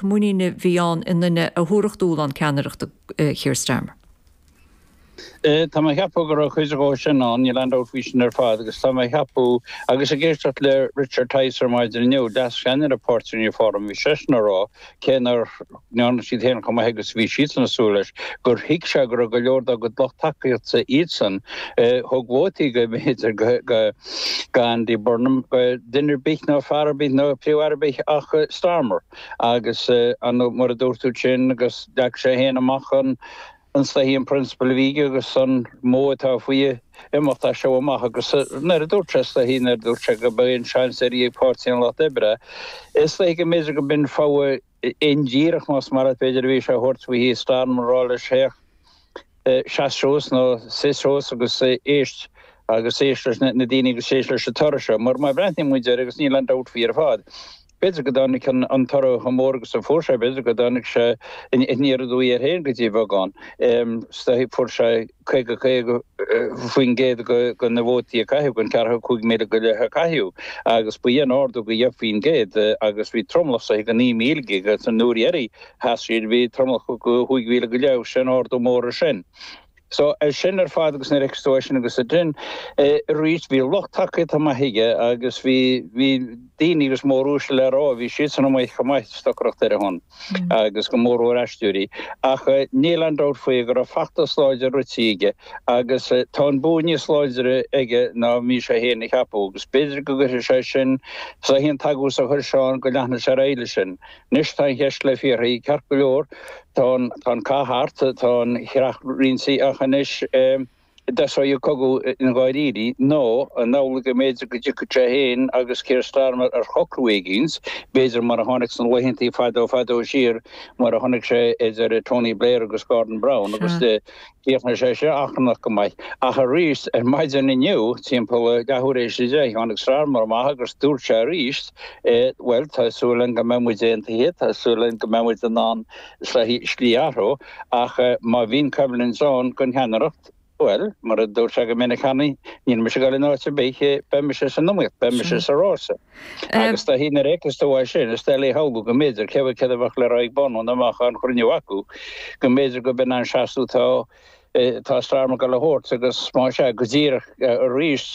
muinín a bhí ann i nduine a thabharfadh dúshlán ceannaireachta Keir Starmer. Tá mé a cheapadh go raibh cuid dhó sin ann, níl aon dabht faoi sin ar fad, agus tá mé a cheapadh, agus ag éisteacht le Richard Tice ar maidin inniu, leas cheannaire páirtí Reform, bhí seisean a rá, cé nár ndearna siad fhéin chomh maith agus a bhí siadsan ag súil leis, gur thuig sé go raibh go leor dá gcuid lucht tacaíochta, iadsan a thug vótaí, go mb'fhéidir, go. go Andy Burnham, duine ar bith ná fear ar bith ná príomh-aire ar bith ach Starmer agus mar a dúirt tú ansin agus leag sé fhéin amach an an slighe an prionsabal a bhí aige agus an modh atá faoi a imeacht as seo amach agus nuair a dúirt sé slighe nuair a dúirt sé go mba é an seans deiridh ag páirtí an Lucht Oibre is slighe go mb'fhéidir go mb'in fogha indíreach más maith leat b'fhéidir a bhí sé a thabhairt faoi Keir Starmer a rá leis Féach, seas suas, nó suigh suas agus éist agus éist leis na daoine agus éist leis an toradh seo mar má bhreathnaíonn muid air agus níl aon dabht faoi ar fad b'fhéidir go dtáinig an toradh chomh mór agus a fuair sé b'fhéidir go dtáinig sé aniar aduaidh air féin go dtí beagán fuair sé 55% de na vótaí a caitheadh, den 45,000 go leith a caitheadh agus b'in ardú go 10% agus bhí tromlach go 9,000 aige agus an uair dheiridh sheas siad bhí tromlach go 5,000 go leith agus sin ardú mór ar sin. So é sin ar fad agus nuair fheiceas tú é sin agus a dén é arís bhí lucht tacaíochta maith aige agus bhí, bhí daoine agus mór uaisle le rá, bhí siadsan amuigh chomh maith ag stocaireacht ar a shon. agus go mór mór aisteoirí, ach níl aon dabht faoi go raibh feachtas láidir rite aige agus tá an bua níos láidre aige ná a bhí sé fhéin a cheapadh agus b'fhéidir go gcuirfidh sé sin sa haon t-agús a chuir sé ann go leanfaidh sé ar aghaidh leis sin. Anois tá an cheist le fiafraí ceart go leor tá an cath thart tá an chreach roinnte ach anois An dtosóidh an cogadh i ndáiríre nó an amhlaidh go mb'fhéidir go dtiocfaidh sé féin agus Keir Starmer ar shocrú éigínt, b'fhéidir mar a tháinig sna laethanta fadó fadó siar mar a chonaic sé idir Tony Blair agus Gordon Brown agus chríochnaigh sé sin achrannach go maith. Ach aríst ar maidin inniu timpeall a leathuair théis a deich tháinig Starmer amach agus dúirt sé aríst bhuel tá súil agam go mbeidh muid aontaithe, tá súil agam go mbeidh muid in ann slí athrú. ach má bhíonn coimhlint ann don cheannaireacht, bhuel, mar a dúirt sé go minic cheana, níl mise ag dul in áit ar bith, beidh mise san iomaíocht, beidh mise sa rása. Agus dá thig na réiteas do bhail sin, is dá léith amhlaidh go mb'fhéidir, cé mhéad a bheadh le rá ag Burnham nó má bhíonn cruinniú acu, go mb'fhéidir gurb in an seasamh atá Starmer ag goil a thabhairt agus má sea, go díreach arís,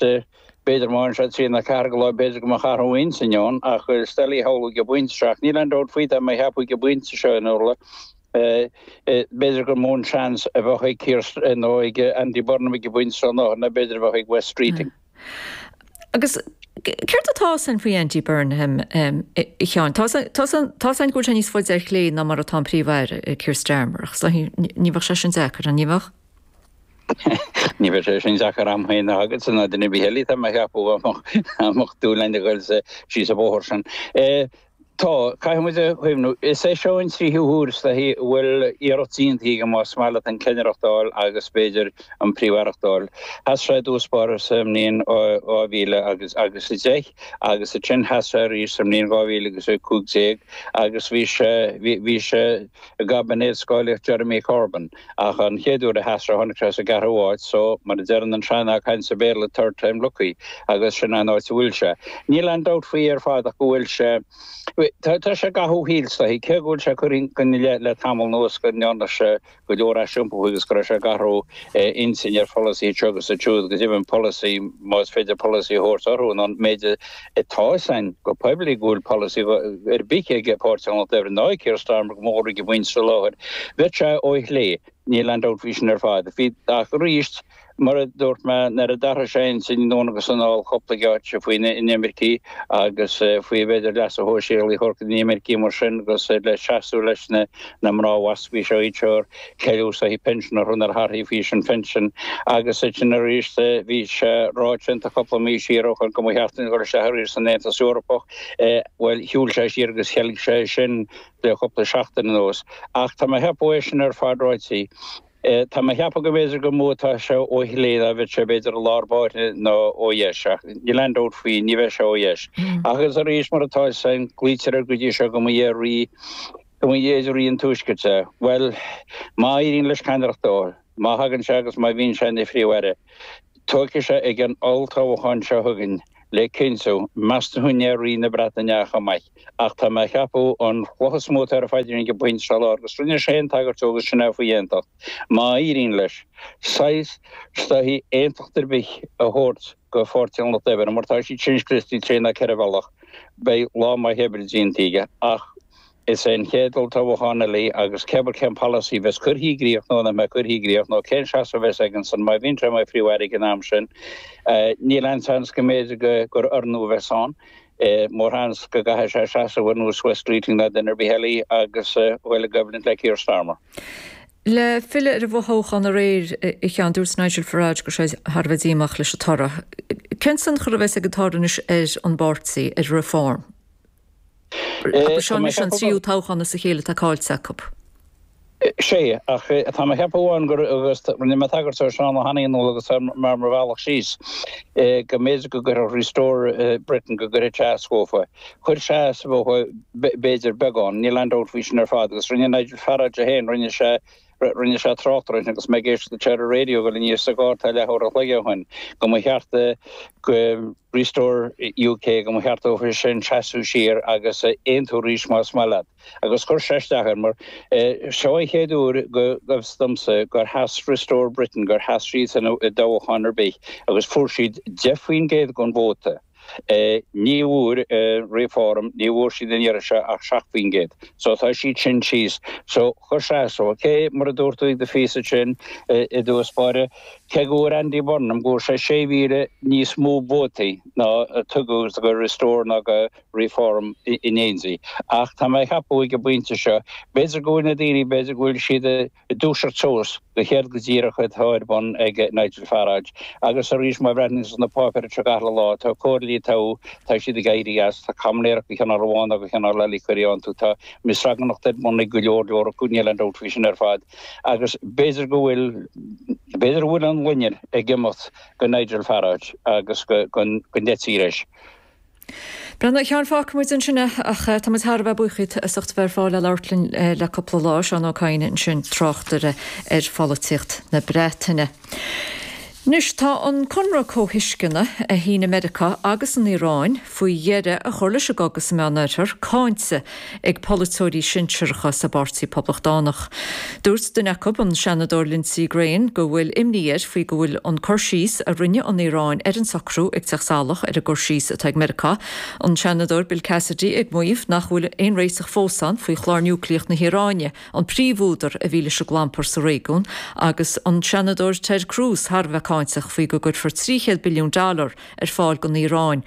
b'fhéidir má fhanann sé trí nó ceathair go lá, b'fhéidir go mbeadh athrú intinne ann, ach is dá léith amhlaidh go bainte isteach, níl aon dabht faoi, tá mé a cheapadh go bainte seo in Iúrla. B'fhéidir gur mó an seans a bheadh ag Keir nó ag Andy Burnham ag an bpointe seo ná mar a b'fhéidir a bheadh ag Wes Streeting. Agus céard atá fhios againn faoi Andy Burnham, a Sheáin? Tá fhios againn go bhfuil sé níos faide ar chlé ná mar atá an príomh-aire, Keir Starmer, ach is dóichí ní bheadh sé sin deacair, an ní bheadh? Ní bheadh sé sin deacair agam fhéin ná agatsa, ná duine ar bith eile atá mé a cheapadh, a mbeadh dúil aige a ghoil síos an bóthar sin. Tá, caithfidh muid a chuimhniú, is é seo an tríú huair is dóichí a bhfuil iarracht déanta aige más maith leat an cheannaireacht d'fháil agus b'fhéidir an príomh-aireacht d'fháil. Sheas sé i dtús báire sa mbliain 2000 agus agus 10 agus ansin sheas sé arís sa mbliain 2000 agus 15 agus bhí sé bhí sé i gcaibinéad scáilíocht Jeremy Corbyn. Ach an chéad uair a sheas sé tháinig sé sa gceathrú háit, so mar a deireann an sean-nath cainte sa Bhéarla third time lucky agus sin an áit a bhfuil sé. Níl aon dabht faoi ar fad ach go bhfuil sé tá sé ag cathú is dóichí cé go bhfuil sé curtha ina leith le tamall anuas go ndearna sé go leor aisiompaithe agus go raibh sé ag athrú a intinn ar pholasaithe anseo agus ansiúd agus go deimhin polasaí más féidir polasaí a thabhairt orthu nó an méid a Tá fhios againn go poiblí go bhfuil polasaí ar bith aige páirt a ghlacadh ar an áit, Keir Starmer go mór-mhór a bhaint sa láthair. Bheadh sé ó chlé, níl aon dabht faoi sin ar fad. Bhí, ach arís, mar a dúirt mé, nuair a d'athraigh sé a intinn anonn agus anall cúpla geáitsí faoi inimircigh agus faoi a bhféidir leasa shóisialaigh a thabhairt d'inimircigh mar sin agus le seasamh leis na mná WASPI ó thaobh. Cealú is dóichí pinsin a rinneadh orthu faoi aois an phinsin agus ansin arís bhí sé ráite aige cúpla mí siar ó shin go mba cheart dúinn dhul isteach arís san Aontas Eorpach. Bhuel, shiúil sé siar agus theilg sé sin le cúpla seachtain anuas. Ach tá mé ag ceapadh é sin ar fad ráite, tá mé ag ceapadh go mb'fhéidir gur mó atá sé ó chlé ná a bheadh sé b'fhéidir i lár báire ná ó dheis. Ach níl aon dabht faoi, ní bheidh sé ó dheis. Ach is arís mar atá, is é a glaoitear air go dtí seo go mba é rí Go mb'fhéidir rí an Tuaiscirt, bhuel, má éiríonn leis ceannaireacht dó, má thagann sé agus má bhíonn sé ina Phríomh-Aire, tiocfaidh sé ag an olltoghchán seo chugainn le cinntiú, meas tú an é Rí na Breataine é chomh maith. Ach tá mé a cheapadh an chloch is mó atá ar a phaidrín ag an bpointe seo i lár agus rinne sé fhéin tagairt dó agus sin é faoi aontacht, má éiríonn leis, saghas is dóichí aontacht ar bith a thabhairt do Pháirtí an Lucht Oibre. Mar tá siad sin scriosta trí nó ceithre bhealach, beidh lá maith oibre déanta aige. Ach. Is é an chéad olltoghchán eile agus cébí cén polasaí a bheas cuirthe i gcríoch nó nach mbeidh cuirthe i gcríoch nó cén seasamh a bheas aigesan má bhíonn sé mar Phríomh-Aire ag an am sin, níl aon seans go mb'fhéidir gur corónú a bheas ann. Mórseans go gcaithfidh sé seasamh ar nós Wes Streeting ná duine ar bith eile agus dul i gcoimhlint le Keir Starmer. Le filleadh ar an bhfothoghchán aréir, a Sheáin, dúirt Nigel Farage go raibh sé thar a bheith díomách leis an toradh. Cén tionchar a bheas ag an toradh anois ar an bpáirtí, ar Reform? Agus seo anois an tríú toghchán as a chéile atá caillte acu. Sea, ach tá mé ag ceapadh amháin gur, agus rinne mé tagairt dó, a Sheáin, le hÁine inniu agus mé ar mo bhealach síos, go mb'fhéidir go gcuirfeadh Restore Britain, go gcuirfeadh sé as dóibh. Chuir sé as dóibh, b'fhéidir, beagán, níl aon dabht faoi sin ar fad, agus rinne Nigel Farage é féin, rinne sé, Rinne sé trácht air agus mé ag éisteacht isteach ar an raidió go luath sa gcarr tá leath uair an chloig ó shin, go mba cheart Restore UK, go mba cheart dóibh sin seasamh siar agus aontú arís, más maith leat. Agus chuir sé isteach air mar seo an chéad uair go bhfios domsa gur sheas Restore Britain, gur sheas siad i dtoghchán ar bith agus fuair siad 10% den vóta. Ní bhfuair Reform, ní bhfuair siad an iarraidh seo ach 7 faoin gcéad. So tá siad sin thíos. So chuir sé as dóibh, OK, mar a dúirt tú i do phíosa ansin i dtús báire, cé go bhfuair Andy Burnham, go bhfuair sé 6,000 níos mó vótaí ná a tugadh go Restore ná go Reform in éindí. Ach tá mé ag ceapadh ag an bpointe seo, b'fhéidir go bhfuil na daoine, b'fhéidir go bhfuil siad, Ag dúiseacht suas go céard go díreach atá ar bun ag Nigel Farage, agus arís má bhreathnaíonn tú sna páipéir seo gach uile lá, tá comhairleoirí a toghadh, tá siad ag éirí as, tá caimiléireacht de chineál amháin nó de chineál eile á cur iontu, tá mí-ionracas ar bun ag go leor leor acu, níl aon dabht faoi sin ar fad, agus b'fhéidir go bhfuil, b'fhéidir go bhfuil an loinnir ag imeacht de Nigel Farage agus den dream atá leis. Bhuel anois, a Sheáin, fágfaidh muid ansin é ach tá muid thar a bheith buíoch díot as ucht a bheith ar fáil le labhairt linn le cúpla lá, Seán Ó Cadhain ansin tráchtaire ar pholaitíocht na Breataine. Anois tá an conradh comhthuisceana a shínigh Meiriceá agus an Iaráin faoi dheireadh a chur leis an gcogadh sa Meánoirthear cáinte ag polaiteoirí sinsearacha sa bPáirtí Poblachtánach. Dúirt duine acu, an Seanadóir Lindsey Graham, go bhfuil imní air faoi go bhfuil an cur síos a rinne an Iaráin ar an socrú ag teacht salach ar an gcur síos atá ag Meiriceá. An Seanadóir Bill Cassidy ag maíomh nach bhfuil aon réiteach fós ann faoi chlár niúcleach na hIaráine, an príomhúdar a bhí leis an gclampar sa réigiún, agus an Seanadóir Ted Cruz thar a bheith cáinteach faoi go gcuirfear 300 billiún dollar ar fáil don Iaráin,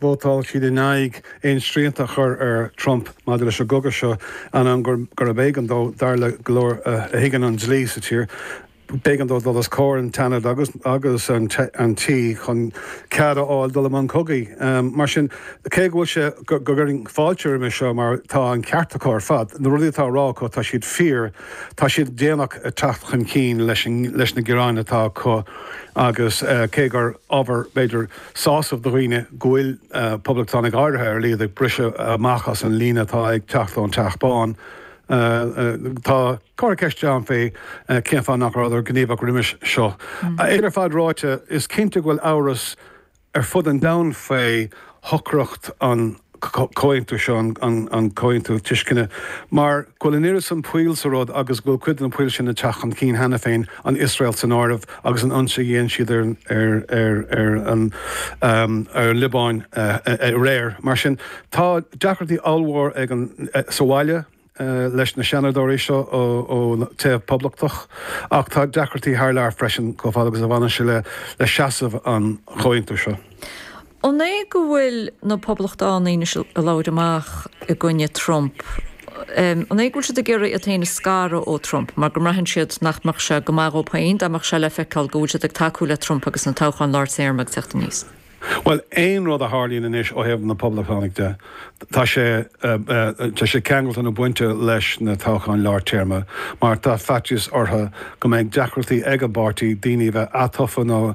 Vótáil siad in aghaidh aon srianta a chur ar Trump maidir leis an gcogadh seo ainneoin gurbh éigean dó, dar le go leor a thuigeann an dlí sa tír, b'éigean dó dul os comhair an tSeanaid agus an Tí chun cead a fháil dul i mbun cogaidh. Mar sin, cé go bhfuil sé go gcuirfinn fáilte roimhe seo mar tá an ceart acu ar fad, na rudaí atá á rá acu tá siad fíor, tá siad déanach ag teacht chun cinn leis na gearáin atá acu agus cé gur ábhar b'fhéidir, sásamh do dhaoine go bhfuil poblachtánaigh áirithe ar a laghad ag briseadh amach as an líne atá ag teacht ón Teach Bán. Tá, cuirfí ceist ann faoi cén fáth nach rabhadar gníomhach roimis seo. É sin ar fad ráite, is cinnte go bhfuil amhras ar fud an domhain faoi shocracht an. comhaontú seo, an comhaontú tuisceana, mar go bhfuil an oiread san poill sa rud agus go bhfuil cuid de na poill sin ag teacht chun cinn cheana féin, an Iosrael san áireamh agus an ionsaí a dhéan siad ar an Liobáin aréir. Mar sin, tá deacrachtaí ollmhór aige sa bhaile. leis na Seanadóirí seo ón taobh Poblachtach ach tá deacrachtaí thar lear freisin chomh fada agus a bhaineann sé le seasamh an Chomhaontú seo. An é go bhfuil na Poblachtánaigh anois ag labhairt amach i gcoinne Trump? An é go bhfuil siad ag iarraidh iad féin a scaradh ó Trump mar go mbraitheann siad nach mbeadh sé go maith dhóibh féin dá mbeadh sé le feiceáil go bhfuil siad ag tacú le Trump agus na toghcháin lár téarma ag teacht aníos? Bhuel, aon rud a tharlaíonn anois ó thaobh na Poblachtánaigh de, tá sé, tá sé ceangailte nó bainte leis na toghcháin lár téarma, mar tá faitíos orthu go mbeidh deacrachtaí ag an bpáirtí daoine a bheith atofa nó,